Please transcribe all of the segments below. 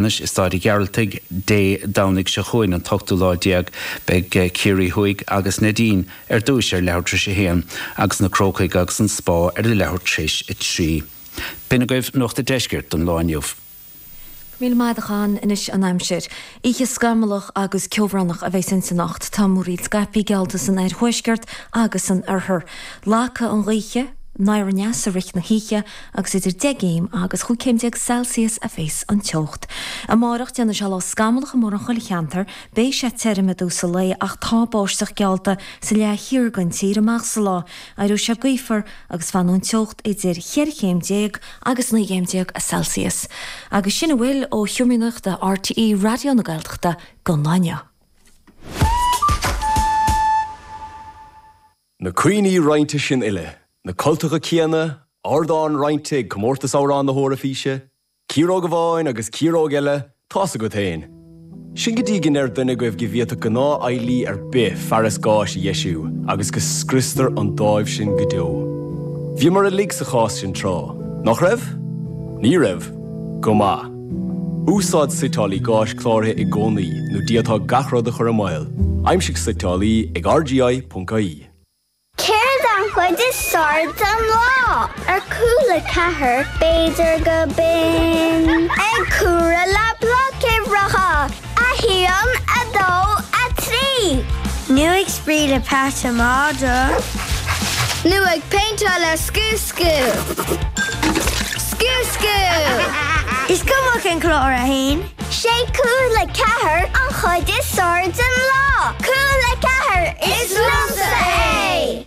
Anois i Stáid a' Ghearaltaigh Dé Domhnaigh seo chugainn, an t-ochtú lá déag, beidh Ciarraí Thuaidh agus Neidín ar dtúis ar leathuair tréis a haon agus na Crócaigh agus an Spá ar a leathuair tréis a trí. B'in agaibh Nuacht a' Deiscirt don lá inniu. Míle maith agat a Sheáin. Anois an aimsir. Oíche scamallach agus ceobhránach a bheas inti anocht. Tá múraíl scaipthe geallta san oirthuaisceart agus san oirthear. Lagfaidh an ghaoth anoir aneas i rith na hoíche agus idir deich gcéim agus chúig chéim déag Celsius a bheas an teocht. Amárach déanfaidh sé lá scamallach i mórán chuile cheantar, beidh sé tirim i dtús an lae ach tá báisteach geallta sa leath thiar den tír amach sa lá, éireoidh sé gaofar agus fanfaidh an teocht idir cheithre chéim déag agus naoi gcéim déag Celsius agus sin a bhfuil ó sheomra nuachta RTÉ Raidió na Gaeltachta don lá inniu. Na cuimhní roinnte sin uile, na cultacha céanna, ardán roinnte ag Comórtas Amhrán na hEoraifíse, ciaróg amháin agus ciaróg eile, tá's agat féin. Sin go dtí go ndeir duine agaibh go bhféadfadh gnáthfheighlí ar bith fearas gáis a dheisiú agus go scriostar an dáimh sin go deo. Bhíomar uilig sa chás sin tráth, nach raibh? Ní raibh? Go maith. Úsáid suiteálaí gáis cláraithe i gcónaí nó d'fhéadfá gach rud a chur i mbaol. Aimsigh suiteálaí ag RGI.ie. Céard an chuid is fearr den lá? Ar Cúla4 b'fhéidir gurb in ag comhaireamh le Blocuimhreacha. 1, 2, 3. Nú ag spraoi le Pat an Madra. Nú ag péinteáil le scuascú. Scuascú! Is cuma cén clár atá ann. Sé Cúla4 an chuid is fearr den lá. Cúla4, is liomsa é!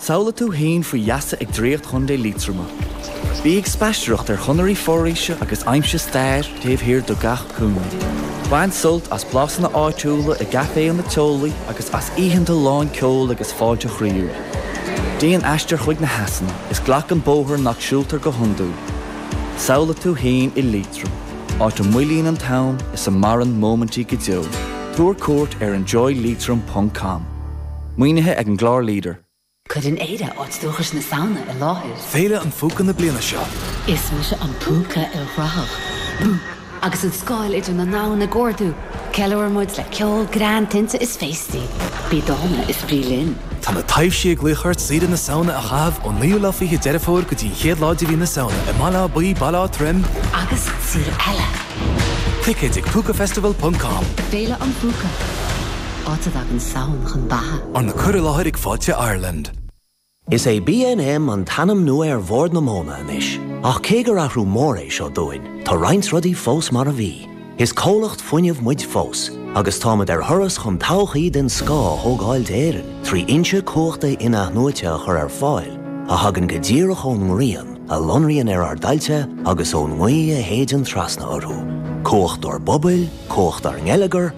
Samhlaigh tú fhéin faoi gheasa ag draíocht Chontae Liatroma. Bí ag spaistearacht ar chonairí foraoise agus aimsigh stair taobh thiar de gach cúinne. Bain sult as blasanna áitiúla i gcaiféanna teolaí agus as oícheanta lán ceoil agus fáilte chroíúil. Déan aistear chuig na heasanna is glac an bóthar nach siúltar go hiondúil. Samhlaigh tú fhéin i Liatroim, áit a moillíonn an t-am is a maireann móimintí go deo. Tabhair cuairt ar enjoyleitrim.com. Maoinithe ag an gclár leader. Cuireann Éire áit dúchais na Samhna i láthair. Féile an Phúca na bliana seo. Is mise an púca ilchruthach, Boo! Agus an scáil idir na ndomhan ag ardú, ceiliúrann muid le ceol, greann, tinte is féastaí. Bí dána is bí linn! Tá na taibhsí ag glaoch ort saoire na Samhna a chaitheamh ón 9ú lá 20 Deireadh Fómhair go dtí an 1ú lá de mhí na Samhna i mBaile Átha Buí, Baile Átha Troim, agus sa saol eile! Ticéid ag Púcafestival.com. Féile an Phúca. Áit a dtagann Samhain chun beatha. Arna cur i láthair ag Fáilte Ireland. Is é BNM an t-ainm nua ar Bhord na Móna anois, ach cé gur athrú mór é seo dúinn, tá roinnt rudaí fós mar a bhí. Is comhlacht fuinnimh muid fós, agus táimid ar thuras chun todhchaí den scoth a thógáil d'Éirinn trí fhoinse cumhachta in-athnuaite a chur ar fáil a thagann go díreach ón ngrian, a lonraíonn ar ár dtailte agus ón ngaoth a shéideann trasna orthu. Cumhacht ár bpobail, cumhacht ár ngeilleagar,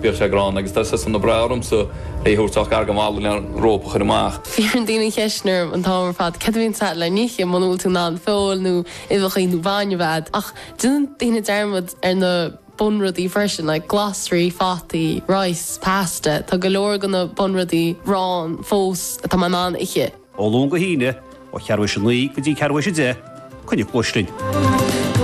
Bhíodh sé gránna agus tá sé sona breá ormsa é a thabhairt ach gar go maith len rópa a chur amach. Fiafraíonn daoine an cheist sin orm an t-am ar fad céard a bhíonns agat le n-ithe muna bhfuil tú in ann feoil nó uibheacha nó bainne a bheith agat ach déanann daoine dearmad ar na bunrudaí freisin like glasraí, fataí, rice, pasta, tá go leor de na bunrudaí ann fós atá mé in ann ithe. Ó Luan go hAoine, ó cheathrú tar éis a naoi go dtí ceathrú tar éis a deich, coinnigh cluais linn.